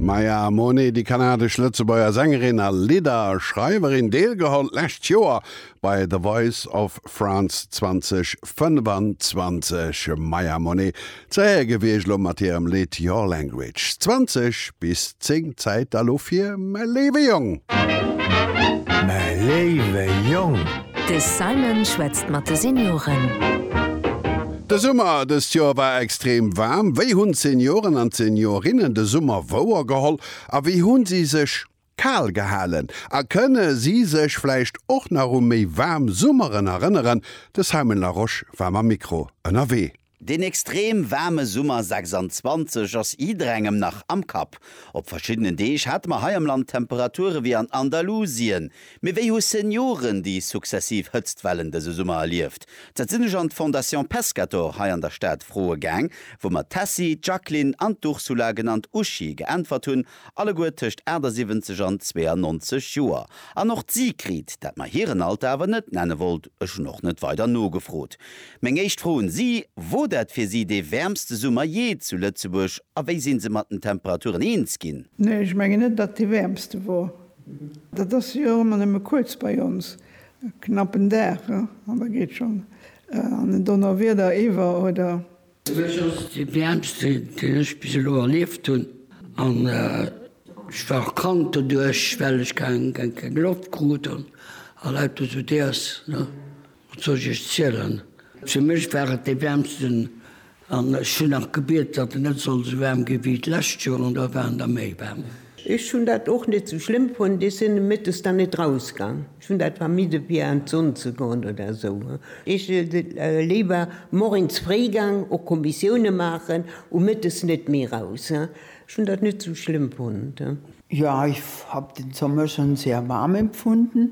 D'Maya Monet, déi kanadesch-lëtzebuerger Sängerin a Lidderschreiwerin, deelgeholl d'lescht Joer bei The Voice of France 2025. D'Maya Monet ze héiere gi wier elo mat hirem Lidd Your Language. 20 bis 10 Zäit da lo fir Mäi léiwe Jong. Mäi léiwe Jong. De Simon schwätzt mat de Senioren. De Summer dëst Joer war extrem waarm. Wéi hunn d'Senioren an d'Seniorinnen de Summer wouer geholl a wéi hu si sech kal gehalen? A kënne si sech vläicht och nach u méi waarm Summeren erënneren? De Simon Larosche war mam Mikro ënnerwee. Deen extrem waarme Summer 26 ass jidderengem nach am Kapp. Op verschiddenen Deeg hate mer hei am Land Temperature wéi an Andalusien, Mee wéi hu Senioren déi successiv Hëtztwellen dëse Summer erlieft? Dat sinn ech an d'Fondation Pescator hei an der Stad froe gaang, wou mer d'Tessy, d'Jacqueline an d'Ursula, genannt Uschi, geäntwert hunn, alleguer tëscht 78 an 92 Joer. An och d'Sigrid, dat mer hiren Alter awer net nenne wollt, ech hunn och net weider nogefrot. Meng éischt Fro un si, Wor dat fir si dee wäermste Summer jee zu Lëtzebuerg a wéi sinn se mat den Temperaturen eens ginn? Nee, ech mengen net, datt et dee wäermste wor. Dat ass jo och ëmmer nëmme kuerz bei ons, e knappen Dag, an da geet schonn an en Donnerwieder iwwer, oder? Fir mech ass et dee wäermste, deen ech bis elo erlieft hunn. An ech war och krank doduerch, well ech keng Loft krut an lauter esou Déers. Wat soll ech iech zielen? Fir mech war et dee wäermsten an ech hunn nach gebiet, datt en net soll esou waarm gi wéi d'lescht Joer an da war en da méi waarm. Ech hunn dat och net esou schlëmm fonnt. Ech sinn e Mëttes dann net rausgaang. Ech hunn dat vermidde fir an d'Sonn ze goen oder esou. Ech si léiwer moiens fréi gaang och Kommissioune maachen, u Mëttes net méi raus. Ech hunn dat net esou schlëmm fonnt. Jo, ech hab den Sommer schonn sehr warm empfunden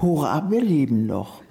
Hurra wir leben noch!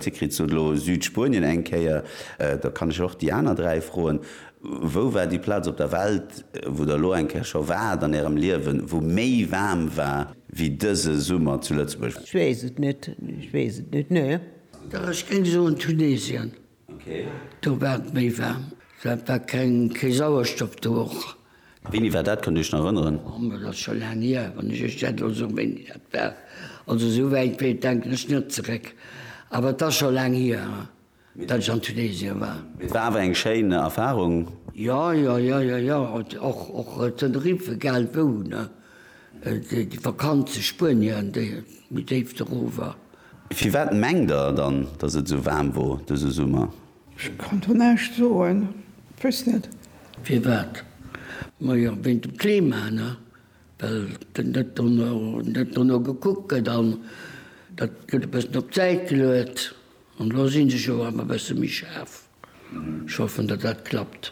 Dir kritt se elo, Südspuenien eng Kéier. Da kann ech och déi aner dräi froen, Wou war déi Plaz op der Welt, wou Der elo eng Kéier scho waart an Ärem Liewen, wou méi waarm war wéi dëse Summer zu Lëtzebuerg? Ech weess et net, ech weess et net, nee. Dach, ech géing soen Tunesien. Do war et méi waarm. Dat war keng, kee Sauerstoff do och. Wéini war dat? Kënnt Dir Iech nach erënneren? Oh, ma dat ass scho laang hier, wann ech Iech dat elo soen, wéini dat war. Also esou wäit wéi, denken ech net zeréck. Awer et ass scho laang hier, datt ech an Tunesien war. Mee et war awer eng schéin Erfarung. Jo, jo, jo, jo, jo. Och, och Tenerife, egal wou, ne? Déi Vakanz zu Spuenien, déi méi déif doruewer. Firwat mengt der dann, dass et esou waarm wor dëse Summer? Ech kann do näischt soen, weess net. Firwat? Ma jo, wéint dem Klima, ne? Well net dono gekuckt gëtt an dat gëtt e bëssen op d'Säit geluet. An elo si se jo awer e bësse méi schaarf. Ech hoffen, datt dat klappt.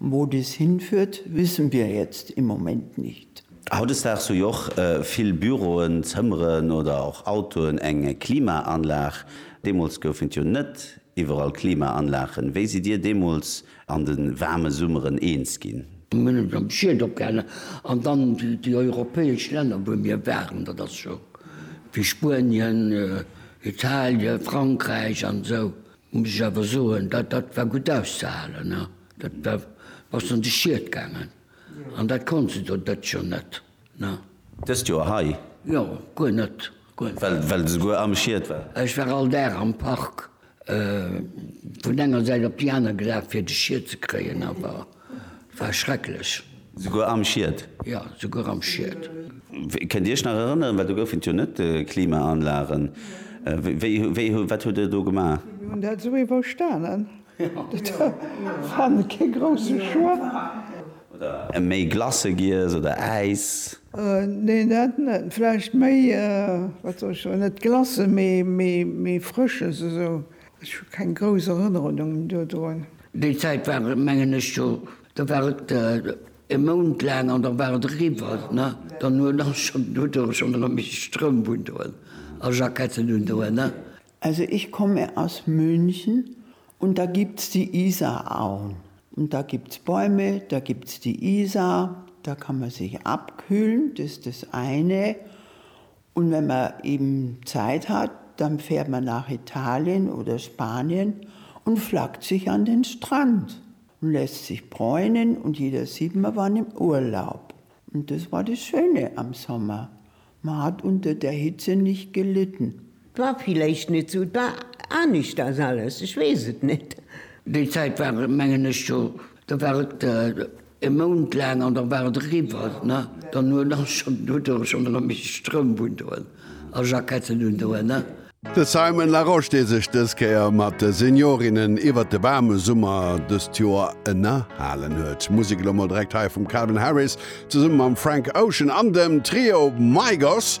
Wou dies hinführt, wissen wir jetzt im Moment nicht. Hautdesdaags hu jo och vill Büroen, Zëmmeren oder och Autoen eng Klimaanlag. Deemools goufen et jo net iwwerall Klimaanlagen. Wéi sidd Dir deemools an de waarme Summeren eens ginn? Mir hunn eis am Schiet opgehalen an dann déi europäesch Länner, wou mir waren, dat ass scho wéi Spuenien, Italien, Frankräich an esou. Muss ech awer soen, dat dat war gutt auszehalen. Dat war, bass an de Schiet gaangen. An dat konnt se do d'ëtt Joer net. Na. Dëst Joer hei? Jo, guer net. Guer net. Well, well de souguer am Schiet war? Ech war all Dag am Park, vun enger Säit op déi aner gelaf, fir de Schiet ze kréien, awer. War schrecklech. Souguer am Schied? Jo, souguer am Schied. Kënnt Dir Iech nach erënneren, well do goufen et jo net Klimaanlagen, wéi, wéi, wat hutt Der do gemaach? Mir hunn dat esou iwwerstanen. Dat war net kee grousse Choix. Oder méi Glace giess oder Äis? Nee, dat net. Vläicht méi, wat soll ech soen, net Glace, mee, mee, mee Frësches esou. Ech hu keng grouss Erënnerunungen dodrun. Déi Zäit war et, mengen ech, jo, da war et e Mount laang an da war et eriwwer. Ne? Dann hu der schonn, hutt der schonn erëm méi Strëmp undoen a Jacketten undoen. Ne? Also ich komme aus München und da gibt's die Isarauen und da gibt's Bäume, da gibt's die Isar, da kann man sich abkühlen, das ist das eine Un wenn mer eben Zeit hat dann fährt mer nach Italien oder Spanien und flackt sich an den Strand und lässt sich bräunen und jeder sieht mer waren im Urlaub und das war das Schöne am Sommer, mer hat unter der Hitze nicht gelitten. War villeicht net sou, et war anischters alles, ech wees et net. Déi Zeit war mengen ech scho, do war et E Mount laang an da war et eriwwer, ne? Dann huet ass schonn, huet e schonn erëm méi Stroum undoen a Jacketten undoen, ne? De Simon Larosche, dee sech dës Kéier mat de Seniorinnen iwwert de waarme Summer dëst Joer ënnerhalen huet. Musek elo mol direkt hei vum Calvin Harris zesumme mam Frank Ocean an dem Trio Migos.